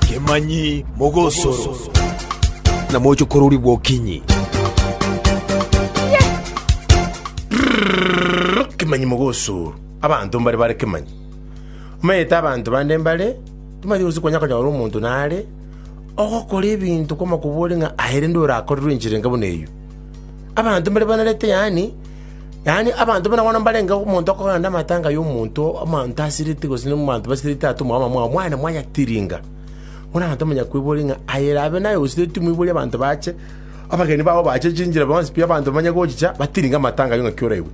Kemanyi mogosoro, na moche kororigwa okinyi. Kemanyi mogosoro, abanto mbare bare kemanyi. Omanyete abanto bande mbare, timanyeti gose konya konyora omonto nare ogokora ebinto kw'amakobore ng'a aye rende orakorerwe enchera enga buna eyio. Abanto mbare banarete yaani Yaani abanto buna bono mbarenge omonto okogenda amatanga y'omonto omonto asireti gose n'abanto basireti atomwa abamwabo mwane mwayatiringa. Bono abanto bamanya kweboria ng'a aye erabe naye osireti moiborie abanto bache abageni babo bache chinchera bonsi pi abanto bamanye gochicha batiringe amatanga ayio ng'aki oraigwe.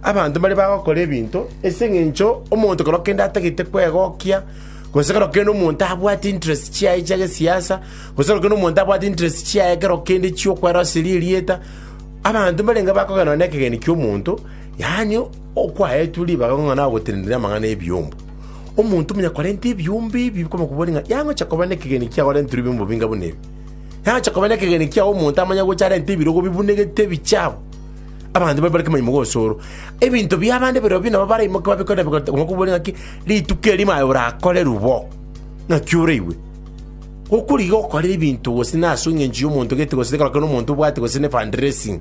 Abanto mbare bagokora ebinto ase eng'encho omonto kero kende atagete kwegokia gose kero kende omonto abwate interest chiaye chia gesiasa gose kero kende omonto abwate interest chiaye kero kende chi'okweroseria erieta Abanto mbarenge bakogenwa nekegeni ki'omonto, yaani okwaetwe ribaga ng'a nagotenenera amang'ana 'ebiombo. Omonto omonyakorenta ebiombe ebi kobakoboria ng'a yangocha koba nekegeni ki agorenterwe ebiombe bobinga buna ebi? Yangocha koba nekegeni ki agwo omonto amanye gocha arente ebirogo bibunegete ebichafu, abanto babe bare kemaimoga ase oro. Ebinto bi'abande birobio nabo baraimoke babikore nabi, kobakoboria ng'aki, rituko eri maye orakorerwe bo, ng'aki oraigwe. Gokorigia okorera ebinto gose na ase engencho y'omonto gete gose ekero kende omonto obwate gose ne fund raising.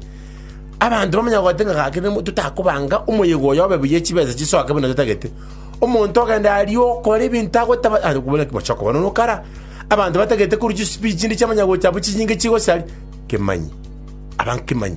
Abanto bamanya goeta ng'a gaki nemo totakobanga omoyega oyo obe buya chibesa chisoke buna totagete. Omonto ogende aria okore ebinto agotaba aye okobwate ng'a mochie okobana na okara. Abanto batagete korwa chispeech chinde chiamanya gocha abwo chinyinge chigosari. Kemanyi. Abange kemanyi.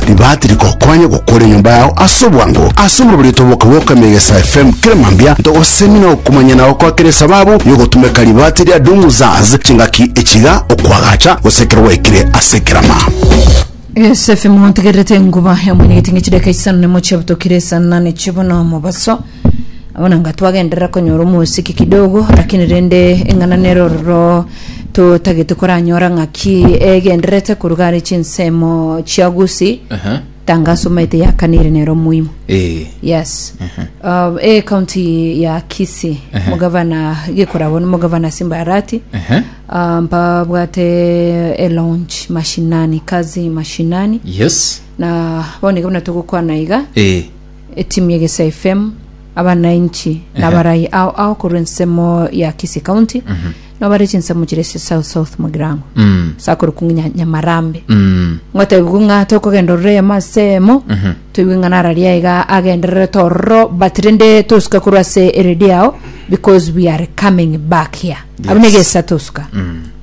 Ribaati rikokonya gokora enyomba yao ase obwango. Ase omorobereito boka bw'okoema egesae FM kera mambia, ntogosemi na okomanyana gokwa kera esababu y'ogotumeka ribaati ria Domu Zaz chingaki echiga, okoagacha, gose ekero gwaikire ase ekerama. Egesae FM ontegererete enguba yamwenyegete ng'a chidakika isano na emo chiabutokire esanane chi'bono mobaso. Bono nga twagenderera konyora omosiki kidogo, lakini rende eng'ana nere ororo totagete koranyora ng'aki egendererete koruga are chinsemo chia Gusii. Aha. Tanga asomaete yakanire nere omoimo. Eh. Yes. Uh, e county ya Kisii Aha. mugavana gekorabo ni mugavana Simba Arati Aha. uh, mpabwate e launch mashinani kazi mashinani Yes. na bono iga buna togokwana iga Eh. Etimu ya Egesia FM, abanainchi na abarai ao ao korwa ensemo ya Kisii County nabo bare chinsemo chire ase South South Mugirango Mm. ase akorokwa ng'a Nya- Nyamarambe Mm. ngotebiwa ng'a tokogenda ororo eyemo ase eyemo toigwe ng'a nararia iga agendererete ororo but rende tosuka korwa ase eredio yao because we are coming back here abuna egesa tosuka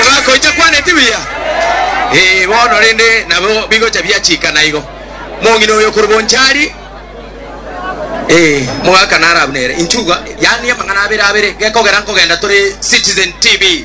Omogaka oito akwaneti buya. Ee, bono rende nabo bigocha biachika naigo. Mong'ina oyo okorwa Bonchari, ee, omogaka naro abwo nere. Inchuga, yaani amang'ana abere abere, gekogera nkogenda tore Citizen TV.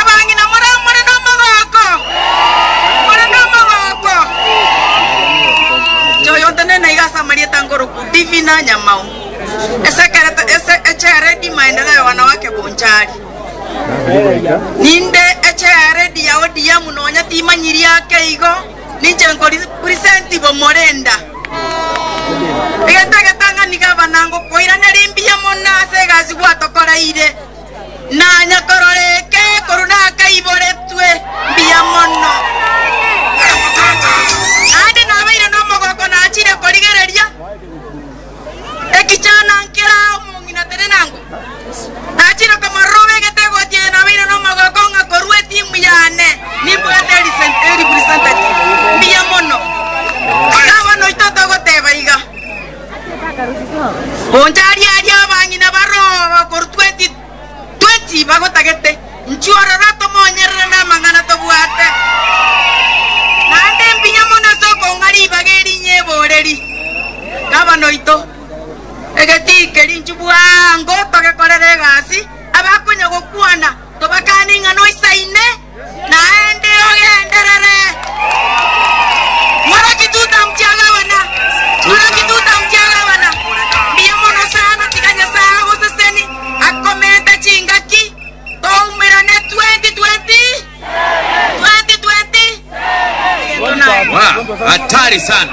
Abang'ina more more nomogooko? More nomogooko? Choyonto nene iga ase amarieta nkoroku Divina Nyamao, esekerete ese echearedi maendeleo wana wake Bonchari. Ninde echearedi ya ODM nonya timanyiri ake igo. Ninche nkori present b'omorenda. Egetegetang'ani gavana ngokoiraneria mbuya mono ase egasi gwatokoreire. Nanya korora eke korwa nakaiboretwe mbuya mono. Naende nabeire nomogoko nachire korigereria. Ekichana nkera omong'ina tenenango, nachire komaroba egetego ati, Aye nabeire nomogooko ng'a korwa etimu yane nimbwate erisen- erepresentative mbuya mono. Iga abana oito togoteba iga. Oncharie aria abang'ina baroo korwa 2012. Twechiba gotagete, inchuo ororo tomoonyerere namang'ana tobwate. Naende mbuya mono ase okong'a ribaga eri nyebooreri, Gavana oito, egetii keria inchuo bwango togekorere egasi, abakonya gokwana tobakane ing'ana oisaine. Naende ogenderere, Mworoki Tutamtiagabana, Mworoki Tutamtiagabana, mbuya mono sana, tiga Nyasae agoseseni, akomente chingaki, toumerane 2020, 2020. Egento naye. Wow, hatari sana.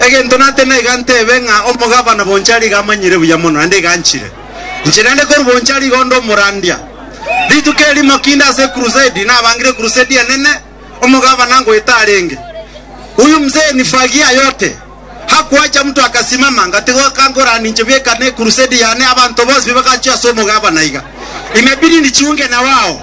Egento nate naiga ntebe ng'a omogavana Bonchari iga amanyire buya mono, naende iga anchire. Inche naende korwa Bonchari iga onde omorandia. Rituko erimo kinde ase ecrusade, nabangire ecrusade enene, omogavana ngoeta arenge. Huyu mzee ni fagia yote. Hakuacha mtu akasimama, ngatigo kankorani inche bweka ne ecrusade yane, abanto bonsi bagaachia ase omogavana iga. Imebidi nijiunge na wao.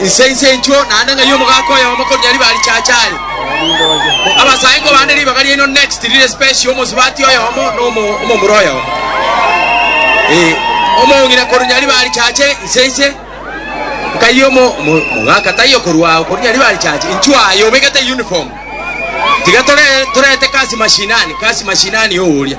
Inse inse inchuo, naende ng'ai omogaka oyomo koruya riba richacha are. Abasaengo bande ribaga riaino next rire special, omosubati oyomo na omo- omomura oyomo. Eh, omong'ina koruya riba richache inse inse. Nkai omo omo- omogaka taiyo okorua ao koruya riba richache inchuo aye obegete uniform. Tiga tore torete kasi mashinani, kasi mashinani oworia.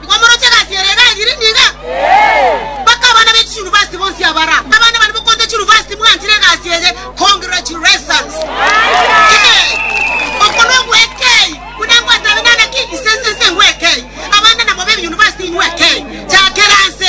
Nigo moroche egasi ere iga egiri niga? Mpaka abana be chiyunivasiti bonsi abara abana bane bokorete chiyunivasiti mwanchire egasi eye, congratulations. Ee, okwo nogwekei, buna ngwatabe nana ki, ise, ise, ise ngwekei. Abande namobe ebiyunivasiti inywe kei, chakera nse.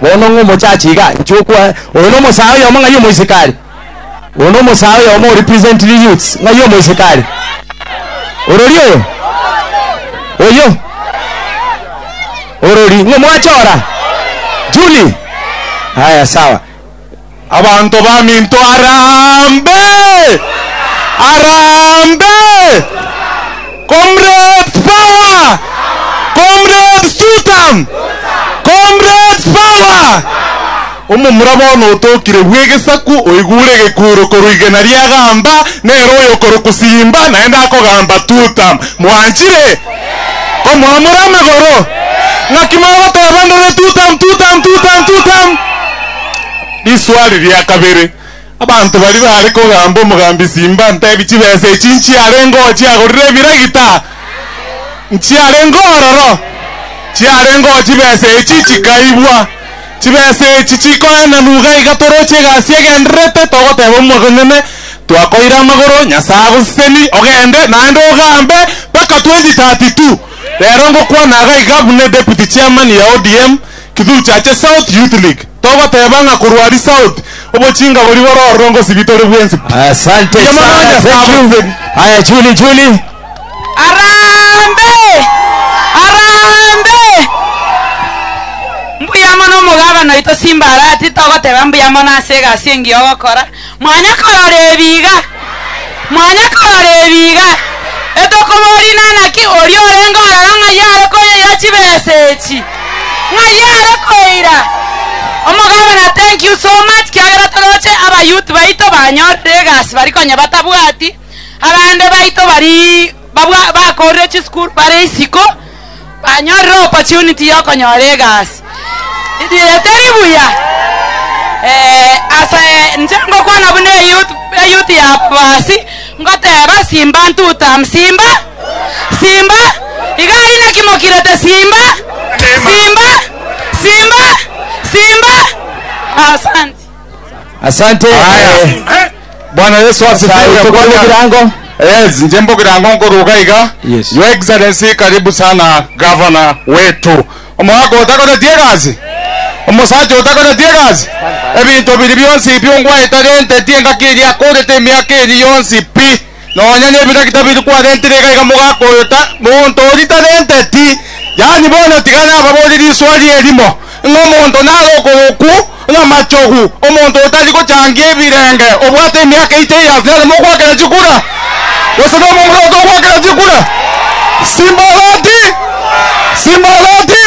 Bono ng'a omochachi iga, inche okwa oyo na omosae oyomo ng'ai omoisikari. Oyo na omosae oyomo o represent the youths ng'ai omoisikari. Orori oyo. Oyo. Orori ng'o mwachora. Julie. Haya sawa. Abanto baminto harambe! Harambe! Comrades power! Comrades tutam! Comrades power! Omomura bono otokire bw'egesaku oigure egekuuro korwa igena ri'agamba nere oyokorokwa Simba naende akogamba tutam! Mwanchire? Komwamura amagoro? Ng'aki mogoteba ndore tutam! Tutam! Tutam! Tutam! Riswali ria kabere, Abanto baria baare kogamba omogambi Simba ntebi chibesa echi nchiarengeo chiagorire ebiragita? Nchiarengeo ororo? Chiarengeo chibesa echi chikaibwa? Chibesa echi chikoenanwa iga iga toroche egasi egendererete togoteba omwaka onyene twakoire amagoro Nyasae agoseseni ogende naende ogambe mpaka 2032. Rero ngokwana iga iga buna deputy chairman ya ODM, Kithuchi ache South Youth League togoteba ng'a korwa aria South obochinga boria bore ororo ngosibie tore bwensi pi. Asante Mbuya mono sana, thank Nyasae you. abonse. Haya, Julie, Julie. Arambe! Arambe! Mbuya mono omogabana oito Simbarati, togoteba mbuya mono ase egasi engiya ogokora. Mwanya korora ebi iga, mwanya korora ebi iga, etokoboria inanaki oria orenge ororo ng'ai are koyeira chibesa echi, ng'ai are koira. Omogabana, thank you so much kiagera toroche aba youth baito banyorire egasi bari konya batabwati, abande baito bari Barabwo bakoorire chisukuru bare isiko banyorire opportunity y'okonyora egasi. Riria teri buya? Eh, ase inche ngokwana buna eyouth eyouth ya ababasi ngoteeba simba ntutam simba simba iga aria naki mokirete simba simba simba simba asante. Asante. Aya. Eh, Bwana Yesu Nyasaye, asifiwe. tokore Bwana- ebirango. Yes, nje mbogirango nkoruga iga. Yes. Your Excellency, karibu sana governor wetu. Omwaka otakoretie egasi. Omosacha otakoretie egasi. Ebinto biri bionsi biongo aetarenteti engaki eri akorete emiaka eri yonsi pi. Nonya nebisaku tabiri kwarentire iga iga mogaka oyo ta monto oria tarente ti. Yaani bono tiga nababorie riswali erimo, ng'a omonto nare okoroku ng'a machogu, omonto otari gochangia ebirenge obwate emiaka 80 years nere mokwakera chikura? Gose nomo omorwoti okwakera chikura? Simbarati! Simbarati!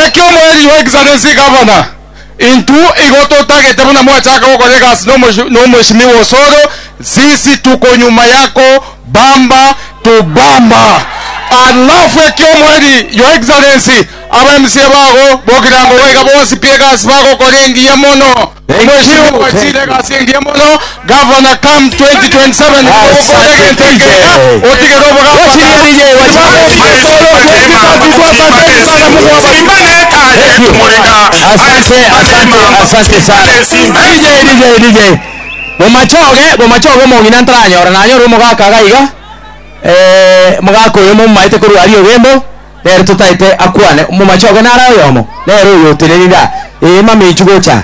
Ekio omoerio your excellency Governor. Intwo igo totagete buna mwachaka gokora egasi nomo- nomoishimi wosoro, sisi tuko nyuma yako bamba to bamba. Alafu ekiomweri, your excellency, aba MCA bago bokirango goika bonsi pi egasi bagokora engiya mono. Omoishimi mwachire egasi engiya mono. Governor come 2027 nigo ogokora egento ekeega otigere obogabana. Bomachoge bomachoge omong'ina ntaranyora nanyore omogaka iga iga omogaka oyo momaete korwa aria ogembo nere totaete akwane momachoge nare oyomo nere oyotenenire aa ee mama echi gocha.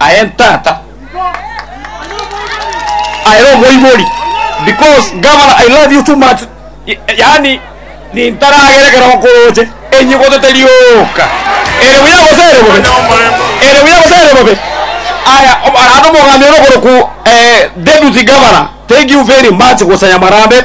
aye ntata aye omoibori because governor i love you too much yaani nintaragera ekero okoroche enyigoto teri oka ere buya gose ere bobe ere buya gose ere bobe aya arande omogambi ore okoroku eh, deputy governor thank you very much gosanya marambe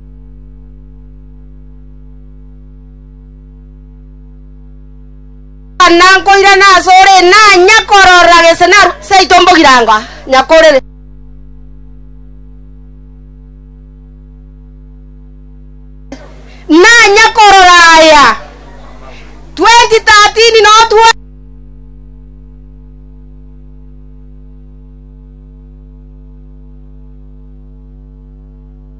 Buna nkoirana asore, nanya korora gese narue seito mbogirango nyakorere. Nanya korora aya 2013 no 20 Aya